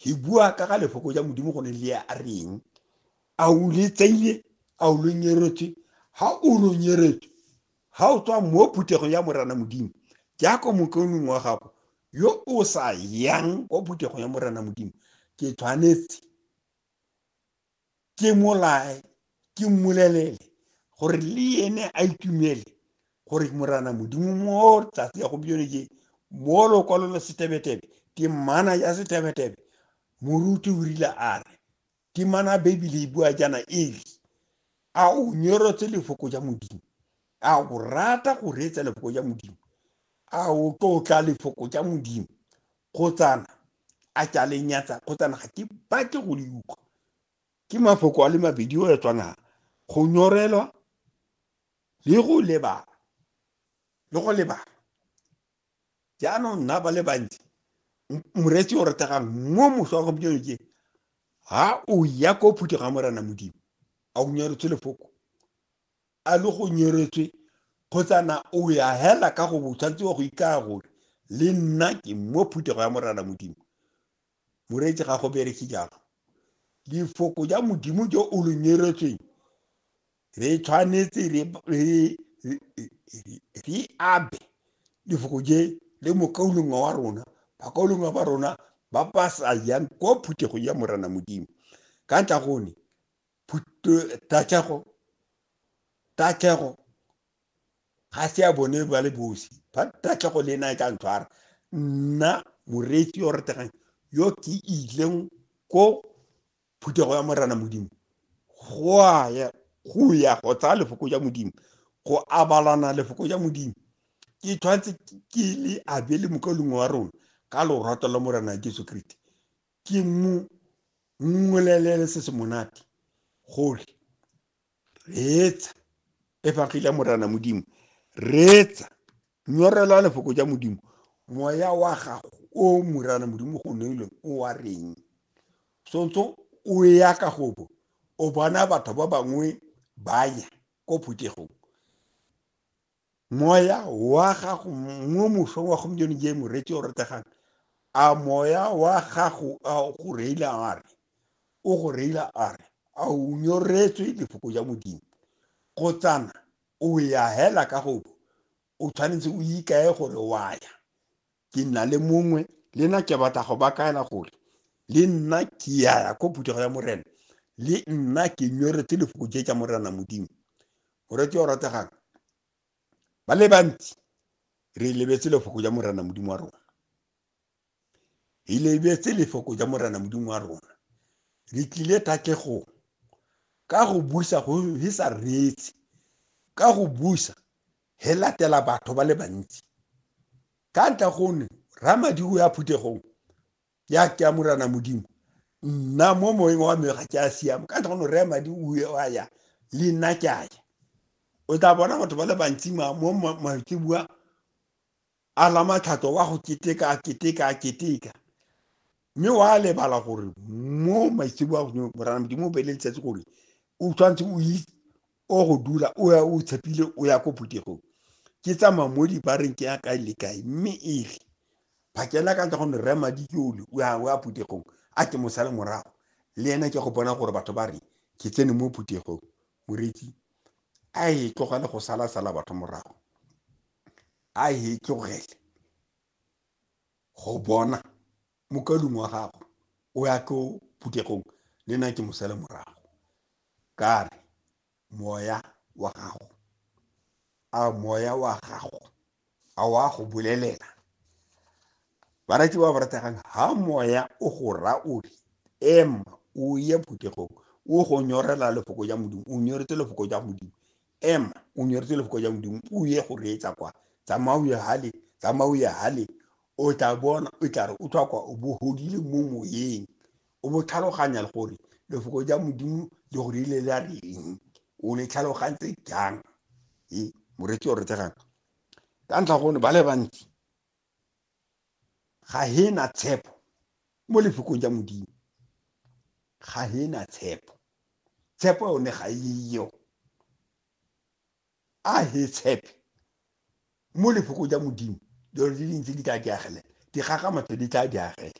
He bua ka ga lefoko ja modimo go ne le a reng a o le tseile a o lo nyeretswe ha o lo nyeretswe ha o tswa mo phuthegong ya morana modimo jaaka mokaonong wa gago yo o sa yang kwa phuthegong ya morana modimo ke tshwanetse ke molae ke mmolelele gore le ene a itumele gore morana modimo mo tsatsi ya gompieno je mo lokwalo la setebetebe temana ya setebetebe moruti o rile a re temana bebele e bua jana e re a o nyorotse lefoko ja modimo a o rata go reetsa lefoko ja modimo a o tlotla lefoko ja modimo kgotsana a ke a le nyatsa kgotsana ga ke batle go le utlwa ke mafoko a le mabedi o ya tshwanang go nyorelwa le go lebala le go lebala jaanong nna ba le bantsi moretsi o retegang mo moswa wa gompieno ke ha o ya ko phuthe ga morena modimo a o nyaretse lefoko a le go nyeretswe kgotsa na o ya hela ka go bo tshwanetse wa go ikaya gore le nna ke mo phuthego ya morana modimo moreetsi ga go bereke jalo lifoko ja modimo jo o lo nyeretsweng re tshwanetse re re- re- re- re abe lefoko je le mokaulongwa wa rona bakaulongwa ba rona ba ba sa yang ko phuthegong ya morana modimo ka ntla gone tatlhego tatlhego ga se ya bone ba le bosi ba tatlhego le ena e ka ntshwara nna moreetsi yo retegang yo ke ileng ko phuthego ya morana modimo go a ya go ya go tsaya lefoko ja modimo go abalana lefoko ja modimo ke tshwanetse ke le abele mokaulong wa rona ka lorato la morana jesu kriste Ke mmu ngolelele se se monate gore reetsa efagile morana modimo reetsa nyorela lefoko ja modimo moya wa gago o morana modimo go neilweng o wa reng sontse o ya ka gobo o bona batho ba bangwe ba ya ko phuthegong moya wa gago mo mosong wa gompieno je moreetsi o rategang a moya wa gago a go reila a re o go reila a re a o nyoretswe lefoko ja modimo go tsana o ya hela ka gobo o tshwanetse o ikae gore wa ya ke nna le mongwe le nna ke batla go ba kaela gore le nna ke yaya ko phuthego ya morena le nna ke nyoretse lefoko je ja morena modimo moretse o rategang ba le bantsi re lebetse lefoko ja morena modimo wa rona re lebetse lefoko ja morena modimo wa rona re tlile tatlhegong ka go busa go sa reetse ka go busa he latela batho ba le bantsi ka ntla gone ramadiko ya phuthegong ya ke ya morana modimo nna mo moeng wa me ga ke a siama ka ntla gone re madi o a ya le nna ke a ya o tla bona batho ba le bantsi mo maitsebua a lamatlhato wa go keteka a keteka a keteka mme wa lebala gore mo maitsebo a godimo morana modimo o beele letsatsi gore o tshwanetse o itse o go dula o ya o tshepile o ya ko phuthegong ke tsamaya mo dibareng ke ya kae le kae mme e re phakela ka ntle gonne rre madi ke ole o ya o ya phuthegong a ke mosale morago le ena ke go bona gore batho ba re ke tsene mo phuthegong moretsi a e tlogele go sala sala batho morago a e tlogele go bona mokalung wa gagwe o ya ko phuthegong le nna ke mosele morago ka re moya wa gago a moya wa gago a wa go bolelela barati ba ba rategang ha moya o go ra o re ema o ye phuthegong o go nyorela lefoko ja modimo o nyoretse lefoko ja modimo ema o nyeretse lefoko ja modimo o ye go reetsa kwa tsamaya o ye hale tsamaya o ye hale o tla bona o tla re o tlhwa kwa o bo godile mo moyeng o bo tlhaloganya le gore lefoko ja modimo le go rile la reng o le tlhalogantse jang e moreetsi o retegang ka ntlha gone ba le bantsi ga he na tshepo mo lefokong ja modimo ga he na tshepo tshepo yone ga eyo a he tshepe mo lefokong ja modimo dilo di dintsi di tla di agele dikgakgamatso di tla di agele